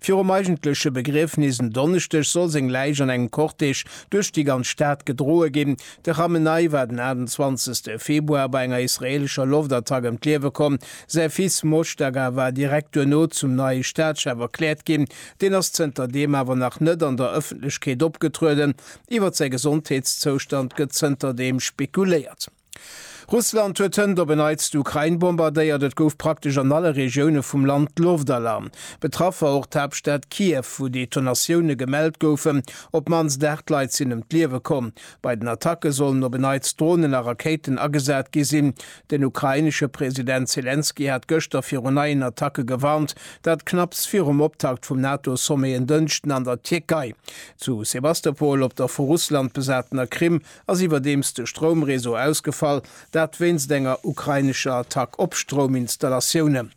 Virum eigentleche Begriefnis en Donneschdeg soll seng Läich an engem Cortège duerch déi ganz Stad gedroe ginn. De Khamenei war den 28 Februar bei enger israeelescher Loftattack ëm d'Liewe komm. Säi Fils Mojtaga war direkt duerno zum neie Staatschef erkläert ginn. Deen ass zënter deem awer nach net an der Ëffentlechkeet opgetrueden. Iwwer säi Gesondheetszoustand gëtt zënter deem spekuléiert. Russland huet hënt op en Neits d'Ukrain bombardéiert. Et gouf praktesch an alle Regioune vum Land d'Loftalarm. Betraff war och d'Haaptstad Kiew, wou Detonatioune gemellt goufen. Op d'mannst 8 Leit sinn ëm d'Liewe komm. Bei den Attacke sollen op en Neits Dronen a Rakéiten agesat gi sinn. Den ukrainesche President Selenskyj hat gëschter viru neien Attacke gewarnt. Dat knapps virum Optakt vum NATO-Sommet en Dënschden an der Tierkei. Zu Sebastopol, op der vu Russland besatener Krim, ass iwwerdeems de Stroumreseau ausgefall, dat wéinst enger ukrainescher Attack op Strouminstallatioune.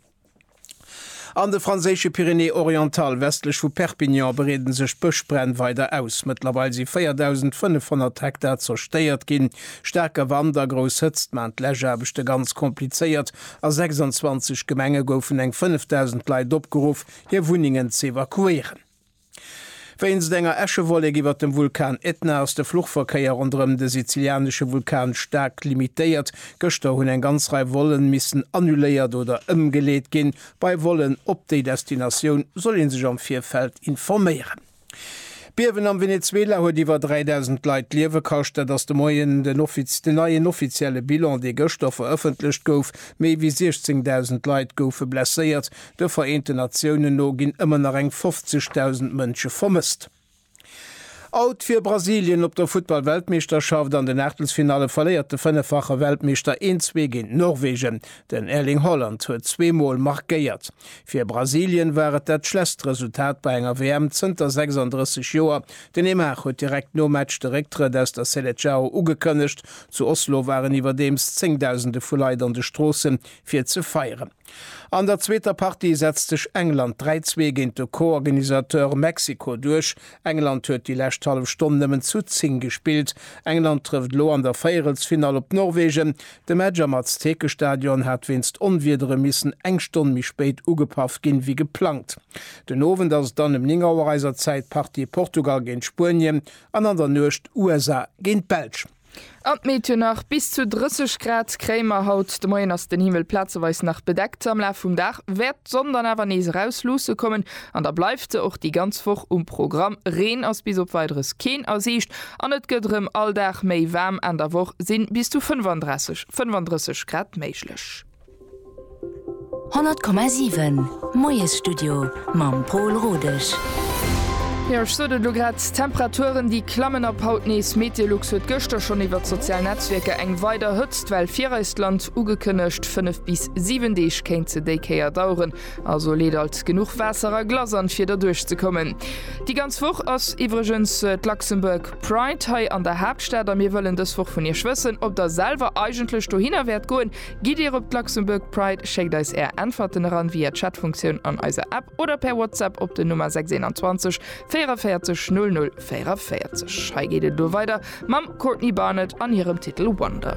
An de franséische Pyrénées-Orientales, westlech vu Perpignan, bereede sech d'Bëschbränn weider aus. Mëttlerweil si 4.500 Hektar zerstéiert ginn. Staarke Wand a grouss Hëtzt maachen d'Läschaarbechte ganz komplizéiert. A 26 Gemenge goufen eng 5.000 Leit opgeruff, hir Wunnengen z'evakuéieren. Wéinst enger Äschewollek iwwert dem Vulkan Etna ass de Fluchverkéier ronderëm de sizilianesche Vulkan staark limitéiert. Gëschter hunn eng ganz Rei Volen missen annuléiert oder ëmgeleet ginn. Bei Volen op déi Destinatioun soll ee sech am Virfeld informéieren. D'Biewen am Venezuela huet iwwer 3.000 Leit d'Liewe kascht. Dat ass de Moien den neien offizielle Bilan, dee gëschter verëffentlecht gouf. Méi wéi 16.000 Leit goufe blesséiert. De Vereenten Natiounen no ginn ëmmer nach eng 50.000 Mënsche vermësst. Out fir Brasilien op der Futtball-Weltmeeschterschaft, An den Aachtelsfinalle verléiert de fënneffache Weltmeeschter 1, 2 géint Norwegen. Den Erling Haaland huet zwee Mol markéiert. Fir Brasilien war et dat schlesst Resultat bei enger WM zënter 36 Joer. Den Neymar huet direkt nom Match de Récktrëtt aus der Seleçao ugekënnegt. Zu Oslo waren iwwerdeems zéngdausende vu Leit an de Stroosse fir ze feieren. An der zweeter Partie setzt sech England 3, 2 géint de Co-Organisateur Mexiko duerch. England huet déi lescht hallef Stonn nëmmen zu 10 gespillt. England trëfft elo an der Véierelsfinall op Norwegen. De Match am Aztekestadion hat wéinst Onwiedere missen eng Stonn méi spéit ugepaff ginn, wéi geplangt. Den Owend ass et dann ëm 9 Auer eiser Zäit d'Partie Portugal géint Spuenien an an der Nuecht USA géint d'Belsch. An d'Meteon nach, Bis zu 30 Grad kréie mer. Haut de Moien ass den Himmel plazeweis nach bedeckt. Am Laf vum Dag wäert d'Sonn dann awer nees erausluusse kommen an da bleift se och déi ganz Woch um Programm. Reen ass bis op Weideres keen a Siicht an et gëtt erëm all Dag méi waarm. Enn der Woch si bis zu 35, 35 Grad méiglech. 100,7 Moiesstudio mam Pol Rodesch. Jo, ech sot et elo grad, D'Temperaturen, déi klammen ab haut nees. Meteolux huet gëschter schonn iwwert d'sozial Netzwierker eng weider Hëtztwell fir eist Land ugekënnegt. Fënnef bis siwen Deeg kéint se déi Kéier daueren, also leet alt genuch Waasser a Glace an, fir derduerch ze kommen. Déi ganz Woch ass iwwregens d'Luxembourg Pride hei an der Haaptstad a mir wëllen dës Woch vun Iech wëssen, ob Der selwer eigentlech dohinner wäert goen. Gitt Dir op d'Luxembourg Pride? Schéckt eis Är Äntwerten eran via Chatfunktioun an eiser App oder per WhatsApp op den Nummer 621 44 00 44. Hei geet et elo weider mam Courtney Barnett an hirem Titel Wonder.